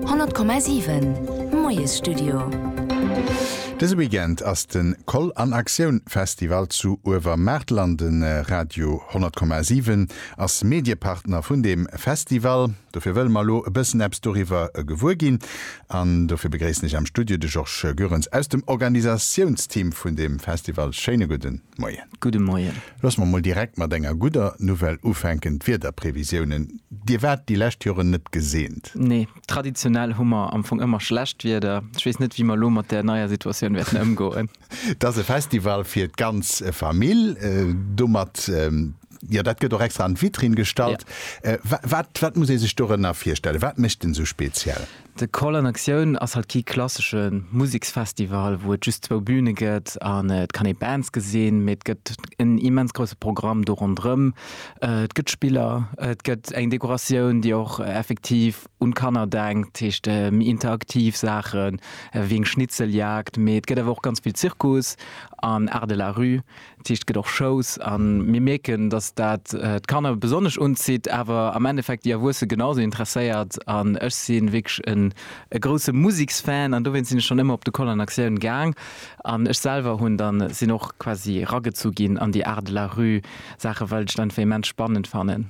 100,7 Moiesstudio. Dëse Weekend ass de Koll an Aktioun Festival zu Uewermaartel an de Radio 100,7 ass Mediepartner vun deem Festival. Dofir wëlle mer elo e bëssen eppes doriwwer gewuer ginn an dofir begréissen ech am Studio de Georges Goerens aus dem Organisatiounsteam vun deem Festival. Schéine gudden. Moien. Gudde Moien. Looss mer mol direkt mat enger gudder Nouvelle ufänken, d'Wiederprevisiounen, Dir waart déi lescht Joren net geseent. Nee, traditionell hu mer am Fong ëmmer schlecht Wieder. Ech weess net, wéi mer elo mat där neier Situatioun wäerten ëmgoen. Et ass e Festival fir d'ganz Famill. Domat, jo, dat gëtt och extra an d'Vitrinn gestallt. Wat, wat muss ee sech dorënner virstellen? Wat mécht en esou speziell? De Call an Aktioun ass halt kee klassesche Museksfestival, wou et just zwou Büne gëtt an et kann ee Bands gesinn, mee et gëtt en immens grousse Programm do ronderëm. Et gëtt Spiller, et gëtt eng Dekoratioun, déi och effektiv un d'Kanner denkt, dat heescht méi interaktiv Saachen, wéi eng Schnitzeljagd, mee et gëtt awer och ganz vill Zirkus an Art de la rue. D'Sicht gëtt och schous a mir mierken, dass dat d'Kanner besonnesch unzitt, awer am Endeffekt déi Erwuesse genausou interesséiert. An ech si wierklech e grousse Museksfan an dowéinst sinn ech schonn ëmmer op de Koll an Aktioun gaang. An ech selwer hunn dann, sinn och quasi eragezu ginn an déi Art de la rue Saache well ech dat einfach immens spannend fannen.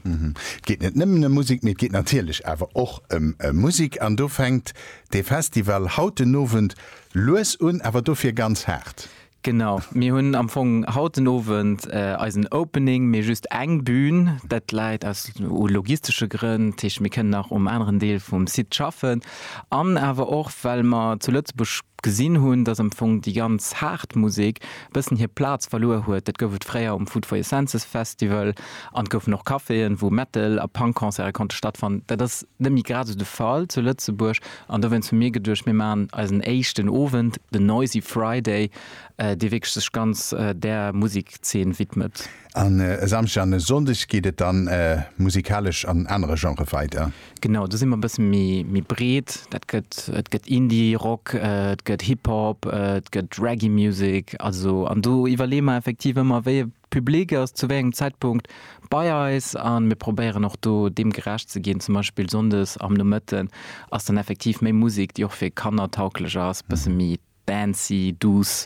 Et geet net nëmmen ëm Musek, mee et geet natierlech awer och ëm Musek an do fänkt dee Festival haut den Owend lues un, awer dofir ganz haart. Genau, mir hunn am Fong haut den Owend eisen Opening, mee just eng Bühn. Dat läit aus logistesche Grënn, dat heescht mir kënnen nach um aneren Deel vum Site schaffen an awer och well mer zu Lëtzebuerg gesinn hunn, dass am Fong déi ganz haart Musek e bëssen hir Plaz verluer huet. Dat gouf et fréier um Food for Your Senses Festival an et goufen och Caféen, wou Metal a Punk Concerte konnte stattfannen. Dat ass net méi grad esou de Fall zu Lëtzebuerg. An dowéinst hu mir geduecht, mir maachen eisen éischten Owend, den Noisy Friday, dee wierklech sech ganz där Musekszeen widmet. An e Samschdeg an e Sonndeg geet et dann musikalesch an anere Genrë weider? Genau, do si mer e bësse méi breet. Dat gëtt, et gëtt Indie Rock, et gëtt Hip Hop, et gëtt Reggae Music, also an do iwwerleeë mer effektiv ëmmer, wéi e Public ass zu wéi engem Zäitpunkt bei eis a mir probéieren och do deem gerecht ze ginn. Zum Beispill sonndes am Nomëtten ass dann effektiv méi Musek, déi och fir Kanner tauglech ass, bësse méi dancy, douce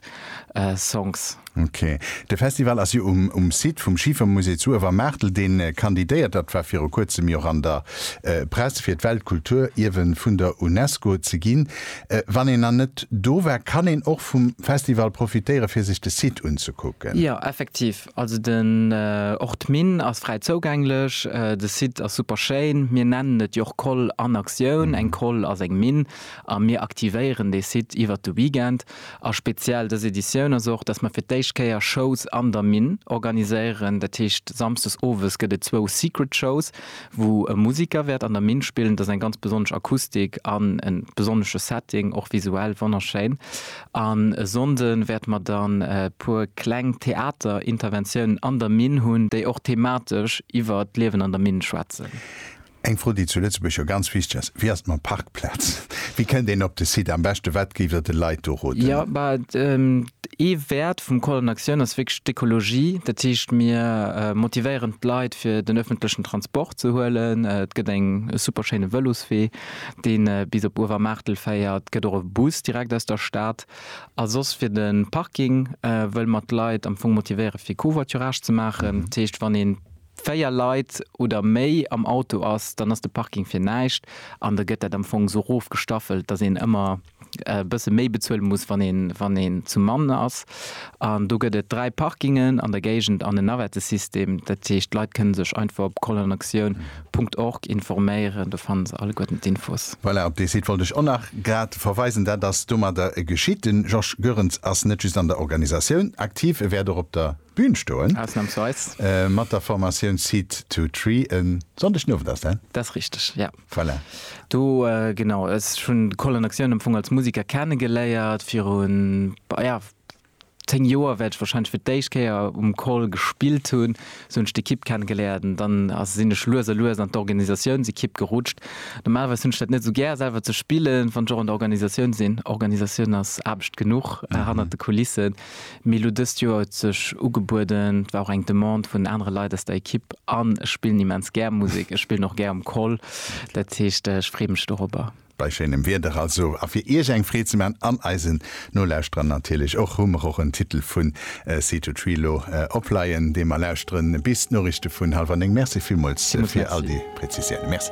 Songs. Ok. De Festival ass jo um Site vum Schifermusée zu Uewermaartel, dee kandidéiert. Dat war viru kuerzem jo och an der Press, fir d'Weltkulturierwe vun der UNESCO ze ginn. Wann een nach net do war, kann een och vum Festival profitéieren fir sech de Site unzekucken. Jo effektiv, also den och d'Minn ass fräi zougänglech, de Site ass super schéin. Mir nennen et jo och Koll an Aktioun, eng Koll ass eng Minn a mir aktivéieren dee Site iwwert de Weekend. A speziell dës Editioun ass och, dass mer fir d'éischt Kéier Shows an der Minn organiséieren, dat heescht samsdes owes gëtt et zwou Secret Shows. wou e Musiker wäert an der Minn spillen. Et ass eng ganz besonnesch Akustik an e besonnesche Setting, och visuell wonnerschéin. An e Sonnde wäerte mer dann e puer kleng Theaterinterventiounen an der Minn hunn, déi och thematesch iwwer d'Liewen an der Minn schwätzen. Eng Fro, déi zu Lëtzebuerg jo ganz wichteg ass, Wéi ass et mam Parkplaz? Wéi kënnt een op de Site am beschte? Wat géift Der de Leit do roden? Jo, bah, Ee Wäert vum Call an Aktioun ass wierklech d'Ekologie. Dat heescht, mir motivéieren d'Leit fir den ëffentlechen Transport ze huelen. Et gëtt eng super schéine Vëloswee, dee bis op Uewermaartel féiert, gëtt och e Bus direkt aus der Stad. A soss fir de Parking wëlle mer d'Leit am Fong motivéiere fir Covoiturage ze maachen. Dat heescht, wann ee véier Leit oder méi am Auto ass, dann ass de Parking fir näischt an da gëtt dat am Fong esou erofgestaffelt, datt een ëmmer e bësse méi bezuele muss, wann een zu Mannen ass. An do gëtt et dräi Parkingen an der Géigend an e Navettesystem. Dat heescht, d'Leit kënne sech einfach op colonactioun Punkt org informéieren, do fanne se alleguerten d'Infos. Voilà, op dee Site wollt ech och nach grad verweisen. Dat ass domadder geschitt. Den Georges Goerens ass net just an der Organisatioun aktiv, e wäert och op der Bün stoen. Ausnamsweis. Mat der Formatioun Seed to Tree. E Sonndeg den Owend ass dat? Dat ass richteg, jo. Voilà. Do, genau, ech hunn d'Colonne Action am Fong als Musiker kenne geléiert, virun, ja, zéng Joer wäert ech wahrscheinlech fir d'éischt Kéier um Col gespillt hunn. Esou hunn ech d'Ekipp kenne geléiert an dann ass, sinn ech lues a lues an d'Organisatiounsekipp gerutscht. Normalerweis hunn ech dat net esou gär, selwer ze spillen, wann ech och an der Organisatioun sinn. Organisatioun ass Aarbecht genuch hannert de Kulissen. Mee lo dëst Joer huet sech ugebueden, et war och eng Demande vun anere Leit aus der Ekipp an ech spillen immens gär Musek. Ech spillen och gär um Koll, dat heescht ech freeë mech dorobber. Bei schéinem Wieder also a fir Iech eng Freed ze man an eisen Nolauschterer natierlech och, hu mer och en Titel vu Seed To Tree lo opleien, dee mer lauschteren bis d'Noriichte vun hallwer 9. Merci villmools fir all déi Präzisiounen. Merci.